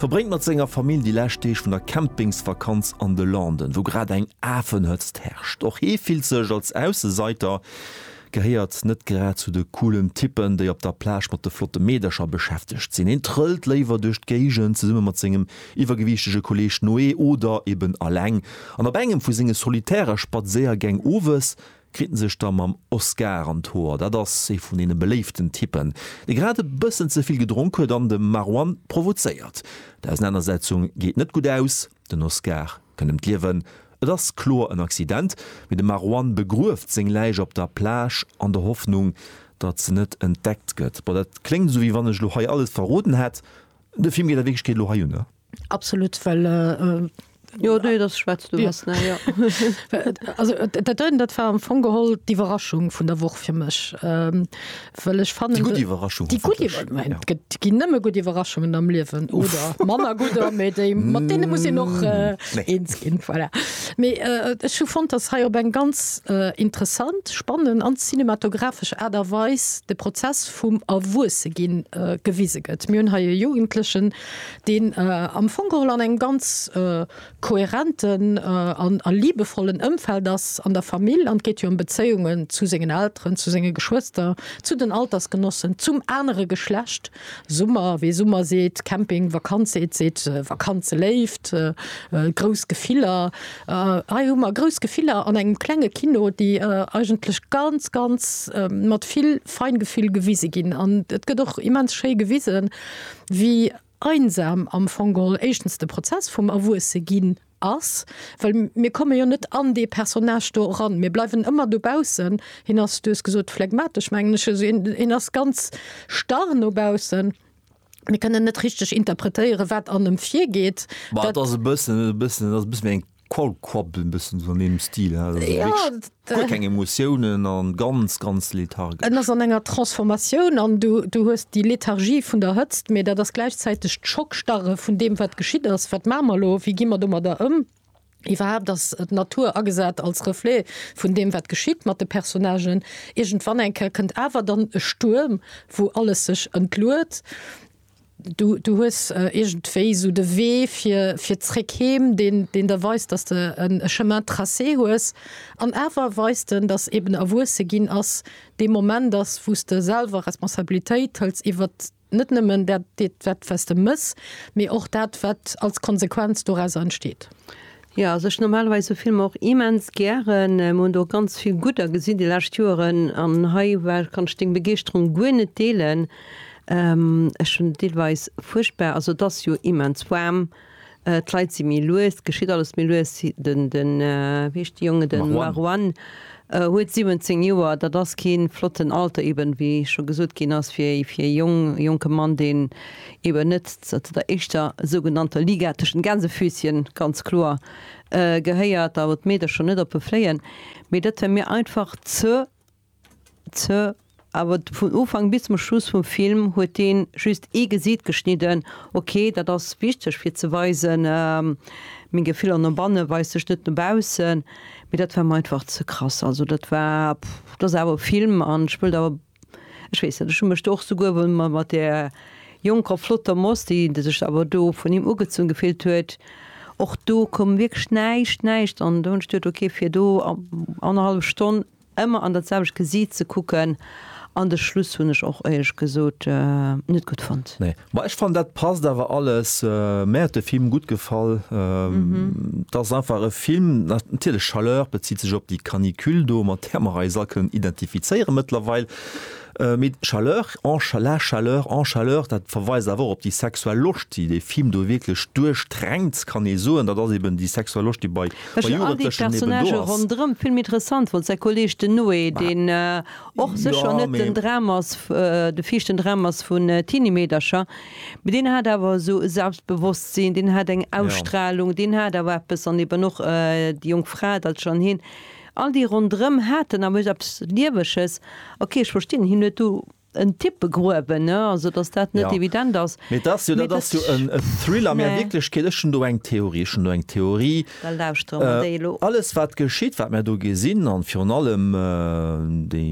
Verbréngt mat senger Famill déi lescht Deeg vun der Campingsvakanz an de Landen, wou grad eng Afenhëtzt herrscht. Och hie fillt sech als Ausseseiter, gehéiert net grad zu de coolen Typpen, déi op der Plage mat de flotte Meedercher beschäftegt sinn. Hien trëllt léiwer duerch d'Géigend, zesumme mat sengem iwwergewiichtege Kolleeg Noé oder eben eleng. An op engem vu senge solitäre Spadséiergäng owes kritt en sech da mam Oscar an d'Hoer. Dat ass ee vun deene beléiften Typpen, dee grad e bëssen ze vill gedronk huet an de Marwan provozéiert. D'Ausenanersetzung geet net gutt aus, den Oscar kënnt ëm d'Liewen. Et ass kloer en Accident, mee de Marwan begrueft seng Läich op der Plage an der Hoffnung, datt se net entdeckt gëtt. Bon, dat kléngt esou, wéi wann ech elo hei alles verroden hätt, De Film geet a Wierklechkeet elo hei ënner. Absolut, well äh, Jo, nee, dat schwätzt du was, ne, ja. Also dat doten, dat war am Fong geholl d'Iwwerraschung vun der Woch fir mech, ähm, well ech fannen. Déi gutt Iwwerraschung. Déi gutt Iwwerraschung. Et ginn nëmme gutt Iwwerraschungen am Liewen oder manner gudder, mee déi, mat deene muss een och eens ginn. Voilà. Mee ech hu fonnt, datt hei op eng ganz interessant, spannend an cinematographesch Aart a Weis de Prozess, vum Erwuesseginn gewise gëtt. Mir hunn hei e Jugendlechen, deen am Fong geholl an engem ganz kohärenten a liebevollen Ëmfeld ass, an der Famill, an et geet jo ëm Bezéiungen zu sengen Elteren, zu senge Geschwëster, zu den Altersgenossen, zum anere Geschlecht, Summer, wee Summer seet, Camping, Vakanz seet, seet Vakanz. Léift, grouss Gefiller. Hei hu mer grouss Gefiller an engem klenge Kino, déi eigentlech ganz, ganz mat vill Feingefühl gewise ginn. An et gëtt och immens schéi gewisen, wéi einsam am Fong geholl éischtens de Prozess vum Erwuesseginn ass, well mir komme jo net an dee Personnage do eran, mir bleiwen ëmmer dobaussen. Hien ass, du hues gesot, phlegmatesch, mengen ech, also hien ass ganz starr no baussen. Mir kënnen net richteg interpretéieren, wat an ëm virgeet. Bah, dat ass e bëssen, e bëssen, dat ass e bëssen eng Kolkwap, e bëssen so an deem Stil. Ja, guer keng Emotiounen an ganz, ganz lethargesch. En ass an enger Transformatioun an du, du hues déi Lethargie vun der Hëtzt, mee dat ass gläichzäiteg d'Schockstarre vun deem, wat geschitt ass. Wat maache mer elo? Wéi gi mer domadder ëm? Iwwerhaapt ass d'Natur agesat als Reflet vun deem, wat geschitt mat de Personnagen. Iergendwann eng Kéier kënnt awer dann e Stuerm, wou alles sech entluet. Du, du hues iergendwéi esou de Wee fir, fir zréck heem, deen, deen der weist, dass de en Chemin tracé hues. An awer weist en, dass eeben Erwuesse ginn ass dee Moment ass, wou s de selwer Responsabilitéit hëls iwwert Net nëmmen dat, wat s de mëss, mee och dat, wat als Konsequenz dorauser entsteet. Jo, also ech normalerweis sou Filmer och immens gären. Mir hunn der och ganz vill gudder gesinn déi lescht Joeren an hei war, kann ech deng Begeeschterung guer net deelen. Ech hunn deelweis fuerchtbar, also et ass jo immens waarm. D'Leit si méi lues, et geschitt alles méi lues. Den, den, wéi heescht de Jongen, den Marwan huet 17 Joer, dat ass kee flotten Alter eben, wéi scho gesot ginn ass, fir ee, fir ee Jong, jonke Mann, deen eben net ze der éischter sougenannter Liga, tëschent Gänsefüßchen, ganz kloer, gehéiert, awer d'Meedercher net op e fléien. Mee dat war mir einfach ze Ze, awer vun Ufank bis zum Schluss vum Film huet deen just ee Gesiit geschnidden. Ok, dat ass wichteg fir ze weisen, meng Gefiller no bannen weist sech net no baussen, mee dat war mer einfach ze krass. Also dat war, pff, dat ass awer e Film an ech wëllt awer, ech weess net, ech hu mech do och souguer wëll mer mat där jonker flotter Moss, déi sech awer do vun him ugezunn gefillt huet, och do koum wierklech näischt, näischt an do hunn ech duet, ok, fir do annerhallef Stonn Emmer an dat selwecht Gesiit ze kucken an de Schluss hunn ech och éierlech gesot net gutt fonnt. Nee ma ech fannen dat passt awer alles. Mär huet de Film gutt gefall. Et ass einfach e Film, natierlech Chaleur bezitt sech op déi Canicule do, mat där mer eis all kënnen identifizéiere mëttlerweil. Mee d'Chaleur, en cha, la chaleur, en chaleur, dat verweist awer och op déi sexuell Loscht, déi dee Film do wierklech duerchdränkt, kann ee soen. Dat ass eben déi sexuell Loscht, déi bei Jugendlechen eben do ass. Ronderëm vill méi interessant wor. Säi Kolleeg den Noé, deen och sécher net den Dram ass, de viischten Dram ass vun Teenie-Meedercher, mee deen hat awer esou e Selbstbewosstsinn, deen hat eng Ausstrahlung, deen hat awer eppes, an eben och déi jonk Fra, dat ass schonn heen. All déi rondrëm haten am Uecht eppes Lieweges. Ok, ech verstinn, hien huet do en Tipp begruewen, ne, also datt dat net evident ass. Mee et ass jo, dat ass jo en Thriller. Mee a Wierklechkeet, ech hunn do eng Theorie, ech hunn do eng Theorie. Da lauschtere mer déi elo. Alles wat geschitt, wat mer do gesinn, a virun allem déi,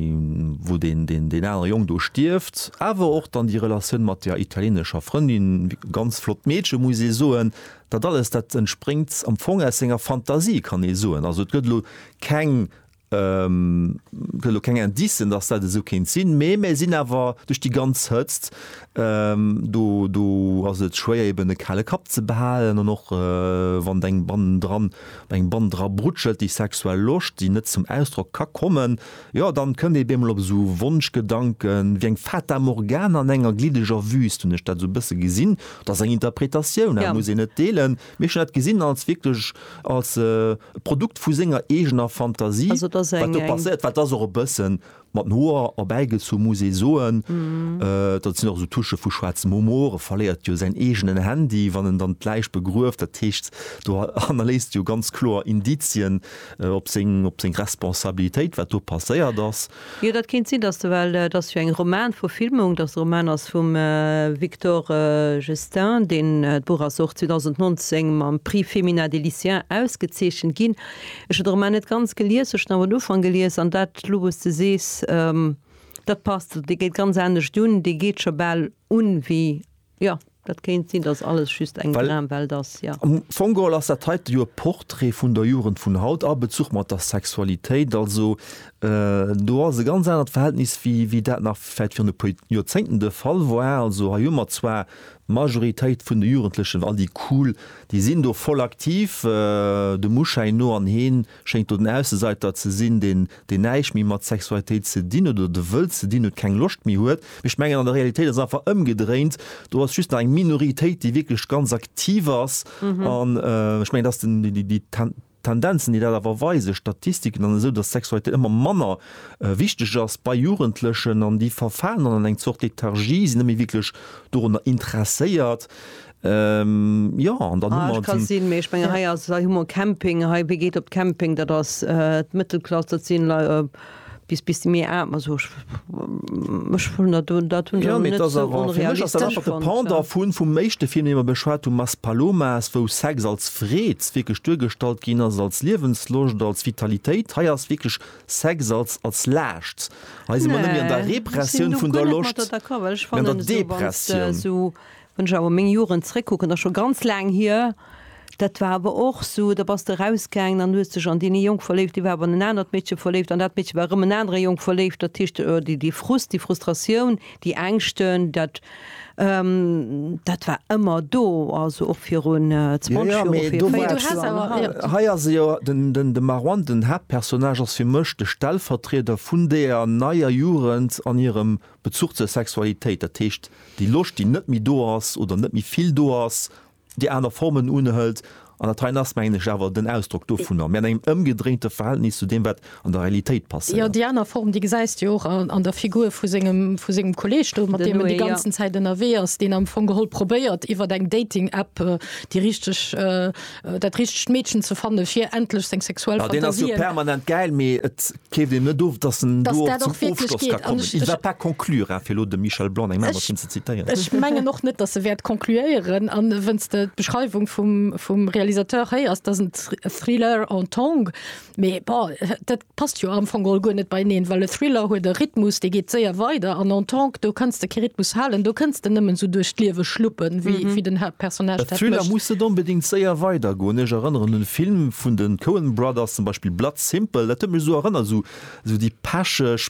wou deen, deen, deen anere Jong do stierft, awer och dann déi Relatioun mat der italienescher Frëndin, ganz flott Meedche muss ee soen, Dat alles, dat entspréngt am Fong aus senger Fantasie, kann ee soen. Also et gëtt elo keng, gëtt elo keng Indicen, datt dat esou kéint sinn, mee mir sinn awer duerch déi ganz Hëtzt, do, do ass et schwéier eben e kale Kapp ze behalen an och wann eng bannendran, eng bann dra brutschelt, déi sexuell Loscht, déi net zum Ausdrock ka kommen. Jo, dann kënnt ee beemol op esou Wonschgedanken, wéi eng Fata Morgana an enger gliddeger Wüst, hunn ech dat esou e bësse gesinn. Dat ass eng Interpretatioun, dat muss een net deelen, mee ech hunn dat gesinn als wierklech als e Produkt vu senger eegener Fantasie, wat do passéiert war. Et ass och e bësse mat den Hoer erbäigezu, muss ee soen. Dat sinn och esou Touchë vu schwaarzem Humor. E verléiert jo säin eegenen Handy, wann en dann d'Läich begrueft. Dat heescht, do hannerléisst e jo ganz kloer Indizien. op seng op seng Responsabilitéit wat do passéiert ass. Jo dat kéint sinn, dass well dat ass jo eng Romanverfilmung, dass de Roman ass vum Victor Gestain, deen d'Buch ass och 2019 mam Prix Femina des Lycéens ausgezeechent ginn. Ech hu de Roman net ganz gelies, ech hunn awer den Ufank gelies an dat elo wou s de sees, dat passt, dee geet ganz anescht un, dee geet scho bal un wéi Jo, dat kéint sinn, dass alles just eng Dramwelt ass, jo. Am Fong geholl ass dat heite jo e Portrait vun der Jugend vun haut a Bezuch mat der Sexualitéit. Also do ass e ganz anert Verhältnis, wéi dat nach vläicht virun e puer Joerzéngten de Fall war. Also hei hu mer zwar d'Majoritéit vun de Jugendlechen, all déi cool, déi sinn do voll aktiv, dem Uschäin no, an heen, schéngt do den Ausseseiter ze sinn, deen deen näischt méi mat Sexualitéit ze dinn huet oder de wëllt ze dinn huet, keng Loscht méi huet. Mee ech mengen an der Realitéit ass et einfach ëmgedréint, do ass just nach eng Minoritéit, déi wierklech ganz aktiv ass an ech mengen, dass den déi déi Ten Tendenzen, déi dat awer weisen, Statistiken an esou, dass Sexualitéit ëmmer manner wichteg ass bei Jugendlechen an déi verfalen dann an eng Zort Lethargie, sinn net méi wierklech dorunner interesséiert. Jo an dann hu mer d'Sinn. Sinn, mee ech mengen hei ass, hei hu mer Camping, hei wie geet op Camping, dat ass d'Mëttelklass, dat sinn Lei bis bis déi méi aarm, also ech ech hunn dat do, dat hunn ech awer net esou onrealistesch fonnt. Fir mech ass dat einfach de Pendant vun vum éischte Film, dee mer beschwat hunn, Maspalomas, wou Sex als Freed wierklech duergestallt ginn ass, als Liewensloscht, als Vitalitéit. Hei ass wierklech Sex als als Laascht. Hei si mer net méi an der Repressioun vun der Loscht, mee an der Depressioun. Wann ech awer meng Joren zréckkucken, ass scho ganz laang hier, dat war awer och esou, da bass de erausgaangen an hues dech an deen ee Jong verléift, dee war awer an en anert Meedche verléift an dat Meedche war erëm en anere Jong verléift. Dat heescht, déi Frust, déi Frustratioun, déi Ängschten, dat, dat war ëmmer do, also och virun 20 Joer, fir 40 Joer. Hei ass e jo, de Marouane, den Haaptpersonnage, ass fir mech de Stellvertrieder vun deeër neier Jugend an hirem Bezuch zur Sexualitéit, dat heescht déi Loscht, déi net méi do ass oder net méi vill do ass, déi aner Formen unhëlt. An dat heien ass, mengen ech, awer den Ausdrock dovunner. Mir an engem ëmgedréinte Verhältnis zu deem, wat an der Realitéit passéiert. Jo, déi aner Form, déi gesäis de jo och an der Figur vu sengem Kolleeg do, mat deem en déi ganzen Zäit ënnerwee ass, deen am Fong geholl probéiert, iwwer eng Dating-App déi richteg, dat richtegt Meedchen ze fannen, fir endlech seng sexuell Fantasien. Jo, deen ass jo permanent gäil, mee et Keeft een net of, dass en do och zum Ofschloss ka kommen. Il va pas conclura, fir elo dem Michel Blanc eng Main Maschinn ze zitieren. Ech mengen och net, dass e wäert concluéieren. An wenn's de d'Beschreiwung vum, vum Realisateur héiers, dass en Thriller en tongue, mee bon, dat passt jo am Fong geholl guer net beieneen, well e Thriller huet e Rhythmus, dee geet séier weider, an en tongue, do kanns de kee Rhythmus halen, do kënns de nëmmen esou duerch d'Liewe schluppen, wéi, wéi den Haaptpersonnage dat mécht. E Thriller muss net onbedéngt séier weidergoen. Ech erënneren un e Film vun de Coen Brothers, zum Beispill Blood. Simpel, dat huet mech esou erënnert, esou, esou déi pecheg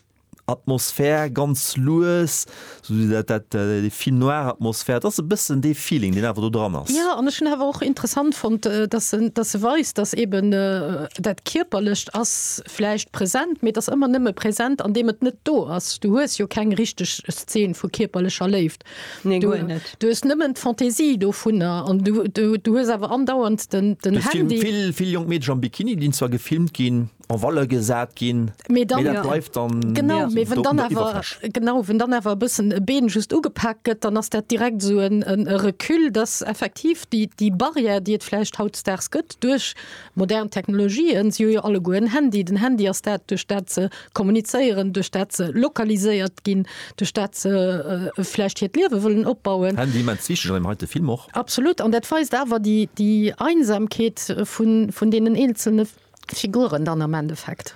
Atmosphär, ganz lues, esou dat, dat, déi film noir Atmosphär, dat ass e bëssen dee Feeling, deen awer do dran ass. Jo, an ech hunn awer och interessant fonnt, dass se, dass se weist, dass eeben dat Kierperlecht ass vläicht present, mee et ass ëmmer nëmme present, andeem et net do ass. Du hues jo keng richteg Szene vu kierperlecher Léift. Konzept. Nee, du, guer net. Du hues nëmmen d'Fantaisie dovunner an du, du, du hues awer andauernd den, den Duerch Handy. Film, vill, vill jonk Meedchen am Bikini, dinn zwar gefilmt ginn, en Valeur gesat ginn, mee dat ja. bleift dann. Genau, mee wën dann awer, genau, wën dann awer e bëssen e Been just ugepaakt gëtt, dann ass dat direkt esou en, en Recul, dass effektiv déi, déi Barrière, déi et vläicht hautdesdaags gëtt, duerch. Modern Technologien, si hu jo alleguer en Handy. Den Handy ass dat, duerch dat se kommunizéieren, duerch dat se lokaliséiert ginn, duerch dat se vläicht hiert Liewe wëllen opbauen. Handy immens wichteg an deem heite Film och. Absolut. An dat weist awer déi, déi Einsamkeet vun, vun deenen eenzelne Figuren dann am Endeffekt.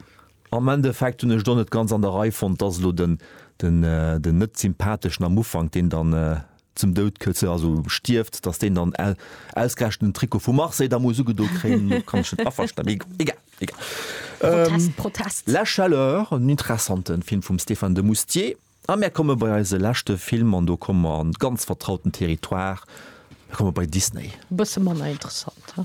Am Endeffekt hunn ech et och net ganz an der Rei fonnt, dass elo den, den, den net sympatheschen am Ufank, deen dann, zum Doud këtze, also stierft, dass deen dann au, ausgerechent den Trikot vu Marseille da muss ugedo kréien, domat kann ech net aversta-, mee egal, egal. Protest, Ähm, Protest. La chaleur, en interessanten Film vum Stéphane de Moustier. A mär komme bei eise leschte Film, an do komme mer an ganz vertrauten Territoire, mär komme bei Disney. Bësse manner interessant, he?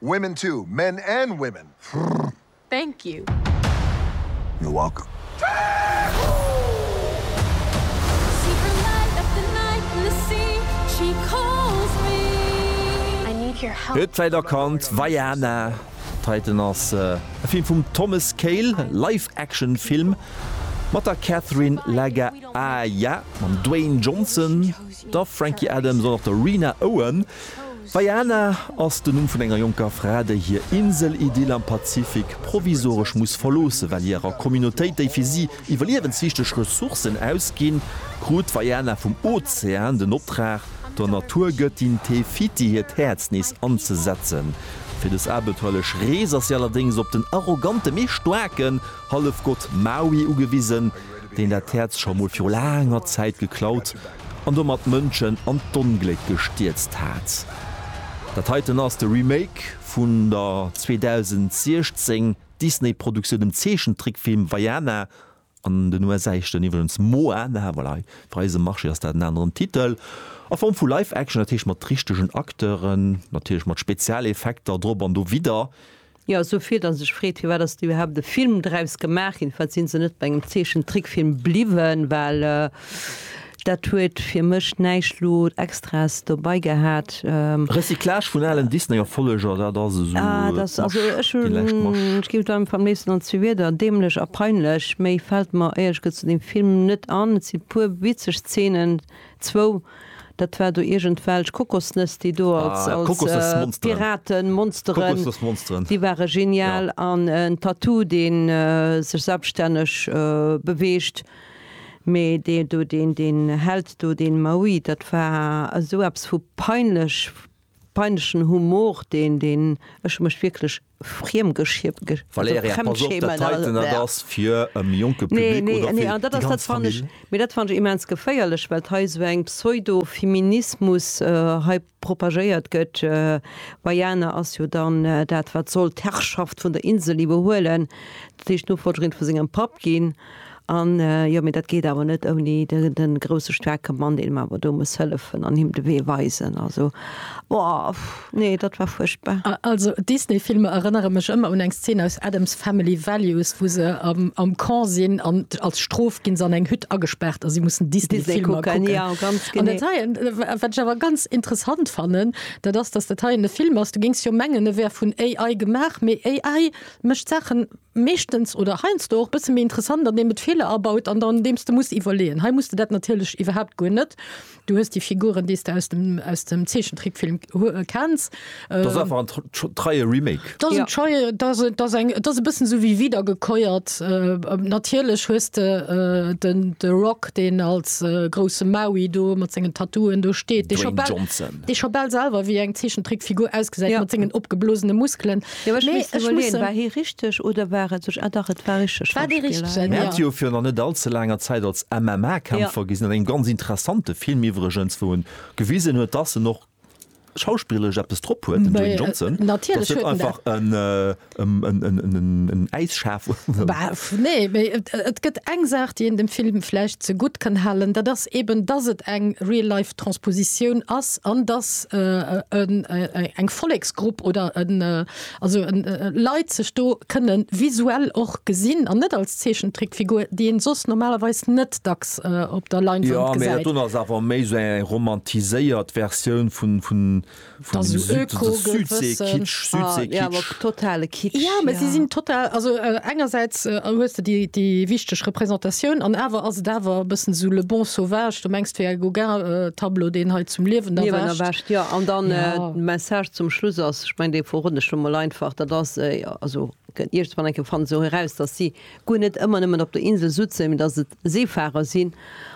Women too, men and women! Frrrr! Thank you! You're welcome! Huet vläit erkannt, Vaiana! Titan ass e Film vum Thomas Kail, Live-Action Film mat der Catherine Lagaaya, mam Dwayne Johnson, der Frankie Adams an och der Rena Owen. Baiana ass den Numm vun enger jonker Fra, déi hir Insel-Idyll am Pazifik provisoresch muss verloossen, well hirer Communautéit déi fir si iwwerliewenswichteg Ressourcen ausginn. Krut d'Vaiana vum Ozean den Optrag, der Naturgëttin Te Fiti hiert Häerz nees anzesetzen. Fir dës abenteuerlech Rees ass si allerdéngs op den arrogante mee staarken Hallefgott Maui ugewisen, deen dat Häerz scho mol viru laanger Zäit geklaut an domat d'Mënschen an d'Ongléck gestierzt hat. Dat heiten ass de Remake vun der 2016 Disney-Produktioun dem Zeechentrickfilm Vaiana, an den USA heescht en iwwerdeems Moana, voilà, hei fir eise Marché ass dat en aneren Titel, a Form vu Live-Action, dat heescht mat richtegen Acteuren, natierlech mat Spezialeffekter drop an dowidder, Jo, esou vill, dass ee sech freet, firwat ass do iwwerhaapt e Film draus gemaach ginn? Firwat si se net bei engem Zeechentrickfilm bliwwen? Well dat huet fir mech näischt lo Extraes dobai gehat. Recyclage vun alen Disney-Erfolleger, dat ass esou d'Masch, déi lescht Masch. Ech ginn der am léifsten an zwee Wieder, däämlech a peinlech. Méi fält mer éierlech gesot zu deem Film net an. Et si e puer witzeg Zeenen. Zwou, dat war do iergendwelch Kokosnëss, déi do als Piraten, Monsteren, déi ware genial. An en Tattoo, dee sech selbststänneg beweegt. Mee dee do, deen, deen Held do, deen Maui, dat war esou eppes vu peinlech, peinlechen Humor, deen, deen, ech hu mech wierklech Friemgeschiemt. Valerja, pass op, dat heiten, dat ass fir e méi jonke Public oder fir déi ganz Famill? Nee, nee, an dat ass, dat fann ech, mee dat fann ech immens geféierlech, well hei esou eng Pseudo-Feminismus hei propagéiert gëtt. Veiana ass jo dann dat, wat soll d'Herrschaft vun der Insel iwwerhuelen, dat heescht d'Nofollgerin vu sengem Papp ginn. An, jo, mee dat geet awer net ouni de grousse staarke Mann, deen em awer do muss hëllefen an him de Wee weisen. Also, oh, nee, dat war fuerchtbar. Also, Disney-Filmer erënnere mech ëmmer un eng Szene aus Addams Family Values, wou se am Camp sinn an als Strof gi se an eng Hütt agespaart a si mussen Disney-Filmer kucken. Disney kucken, jo, ganz genee. An dat heien, wat ech awer ganz interessant fannen, dat ass, dass dat heien e Film ass, du géings jo mengen, e wär vun AI gemaach, mee AI mécht Saachen, meeschtens oder heiansdo och e bësse méi interessant, andeem et Feeler abaut an dann deems de muss iwwerleeën. Hei muss de dat natierlech iwwerhaapt guer net. Du hues déi Figuren, déi s de aus dem Zeechentrickfilm kenns. Dat ass einfach en treie Remake. Dat ass en treie, dat ass eng, dat ass e bëssen esou wéi wiedergekäuert. Natierlech hues de den The Rock, deen als grousse Maui do mat sengen Tattooen do steet, dee scho bal selwer wéi eng Zeechentrickfigur ausgesäit mat sengen opgeblosene Muskelen. Jo ech misst iwwerleeën, war hie richteg oder war et sech, ah dach et war richteg Schauspiller. Mir hat jo fir nach net all ze laanger Zäit als MMA-Kämpfer gesinn, an engem ganz interessante Film iwwregens, wou en gewisen huet, dass en och schauspillerlech eppes drop huet, den Dwayne Johnson, dass en net einfach en Äisschaf war. Nee, mee et gëtt eng Saach, déi een dem Film vläicht ze gutt kann halen, dat ass eeben, dass et eng Real-Life. Transpositioun ass an dass eng Volleksgrupp oder Leit sech do kënne visuell och gesinn an net als Zeechentrickfigur, déi ee soss normalerweis net dacks op der Leinwand gesäit. Jo, mee dat do ass awer méi esou eng romantiséiert Versioun vun. Vun dem Süd, so de Südsee-Kitsch, Südsee-Kitsch. Jo, mä si sinn total, also engersäits hues de déi wichteg Repräsentatioun an awer ass et awer e bëssen esou le bon sauvage, du mengs et wär e Gauguin-Tableau, deen hei zum Liewen erwächt. Jo, an dann de Message zum Schluss ass, ech mengen, dee verroden ech elo mol einfach, dat ass, also iergendswann eng Kéier fanne se och eraus, datt si Guer net ëmmer nëmmen op der Insel sutzen, mee dass et Seefahrer sinn.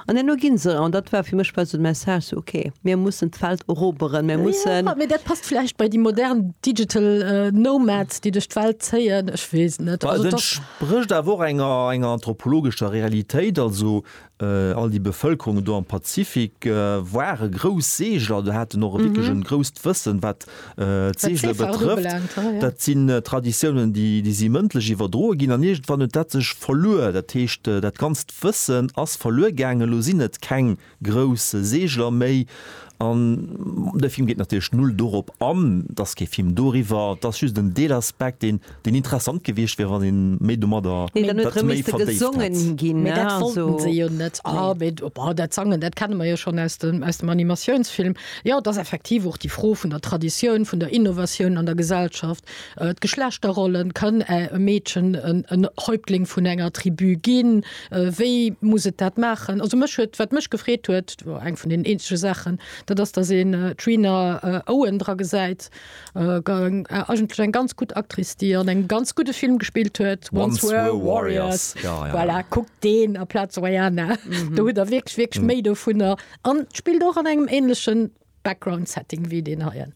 An herno gi se, an dat war fir mech bal esou de Message, esou ok, mir mussen d'Welt eroberen, mir mussen. Jo, mee dat passt vläicht bei déi modern digital nomads, déi duerch d'Welt zéien, ech weess et net. Ma et entsprécht awer och enger, enger anthropologescher Realitéit. Also All déi Bevëlkerungen do am Pazifik ware grouss Seegler, do haten och wierklech e grousst Wëssen, wat d'Seegele betrëfft. Dat sinn Traditiounen, déi si mëndlech iwwerdroe ginn an iergendwann huet dat sech verluer. Dat heescht, dat ganzt Wëssen ass verluer gaangen. Elo sinn et keng grouss Seegler méi an de Film geet natierlech null dorop an. Et ass kee Film doriwwer, et ass just en Deelaspekt, dee deen interessant gewiescht wier wann een méi domadder dat méi verdéift hätt. Mee dat wollten se jo net. Oh, dat Sangen, dat kenne mer jo schonn aus dem Animatiounsfilm. Jo, et ass effektiv och déi Fro vun der Traditioun, vun der Innovatioun an der Gesellschaft. D'Geschlechterrollen, Kann e Meedchen en Häuptling vun enger Tribu ginn? Wéi muss et dat maachen? Also mech huet, wat mech gefreet huet, eng vun den eenzege Saachen, dat ass, datt een d'Rina Owen dra gesäit, Eigentlech eng ganz gutt Actrice, déi an engem ganz gudde Film gespillt huet, Once Were a Warrior. Voilà, kuckt deen aplaz Vaiana. Do hutt Der wierklech, wierklech méi dovunner. An d'spillt och an engem änlechen Background-Setting wéi deen heien.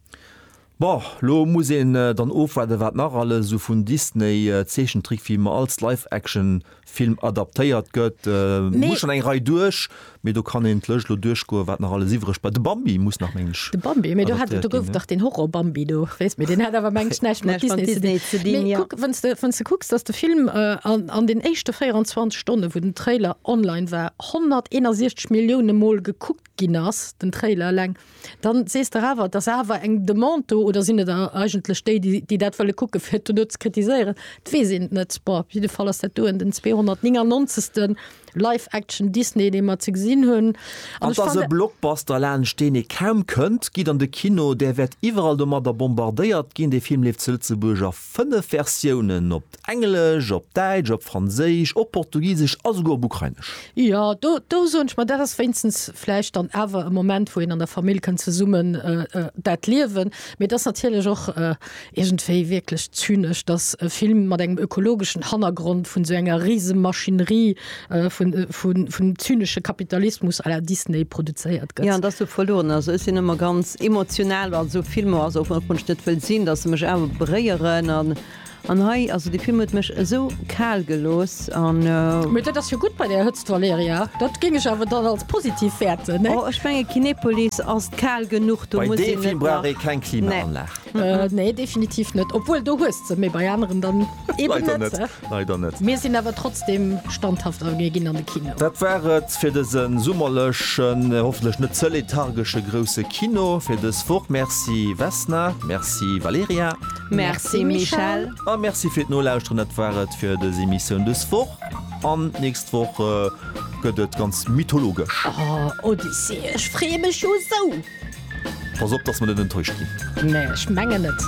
Bon, lo muss een dann ofwaarden, wat nach alles esou vun Disney-Zeechentrickfilmer als Live-Action-Versioune Film adaptéiert gëtt, muss schon eng Rei duerch, mee do kann een d'Lëscht elo duerchgoen, wat nach alles iwwreg bleift. De Bambi muss nach, meng ech. De Bambi, mee do hat, do gouf dach deen Horror-Bambi do, weess, mee deen hat awer, meng ech, näischt mat Disney ze dinn. Mee kuck, wann's de, wann's de kucks, dass de Film an den éischte 24 Stonne wou den Trailer online war 161 Millioune mol gekuckt ginn ass, den Trailer eleng, Dann sees der awer, et ass awer eng Demande do, oder sinn et eigentlech déi, déi dat wëlle kucken, fir dono ze kritiséieren? Et weess een et net. Bon, op jidde Fall ass dat doen den 299. Live-Action Disney, dee mer ze gesinn hunn. An et ass e Blockbuster, laanscht deen ee kaum kënnt. Gitt an de Kino, där wäert iwwerall domadder bombardéiert ginn. Dee Film leeft zu Lëtzebuerg a 5 Versiounen, op Englesch, op Däitsch, op Franséisch, op Portugisesch a souguer op Ukrainesch. Jo, do, do soen ech, ma dat ass wéinstens vläicht dann awer e Moment, wou een an der Famill kënnt zesummen dat liewen. Mee et ass natierlech och iergendwéi wierklech zynesch, dass e Film mat engem ökologeschen Hannergrond vun esou enger Risemaschinerie, vun zynesche Kapitalismus à la Disney produzéiert gëtt. Jo, an dass du verlueren ass. Ech sinn ëmmer ganz emotional bei esou Filmer, also och wann ech net wëll sinn, dass se mech awer beréieren an hei, also dee Film huet mech esou kal gelooss an. Mee dat ass jo gutt bei där Hëtzt, Valerija. Dat géing ech awer dann als positiv wäerten, ne? Oh, ech menge Kinepolis ass kal genuch, do muss een net nach. Bei deem Film brauch ee keng Klimaanlag. Nee, definitiv net. Obwuel, do hues de, mee bei aneren dann eben net. Leider net. Mir sinn awer trotzdem standhaft a mir ginn an de Kino. Dat war et fir dëse summerlechen, hoffentlech net ze lethargesche grousse Kino fir dës Woch. Merci Vesna, merci Valerija. Merci Michèle. A merci fir d'Nolauschteren. Dat war et fir dës Emissioun dës Woch. An d'nächst Woch gëtt et ganz mythologesch. Oh, Odyssee, ech freeë mech jo esou! Pass op, dass mer net enttäuscht ginn. Nee, ech mengen net.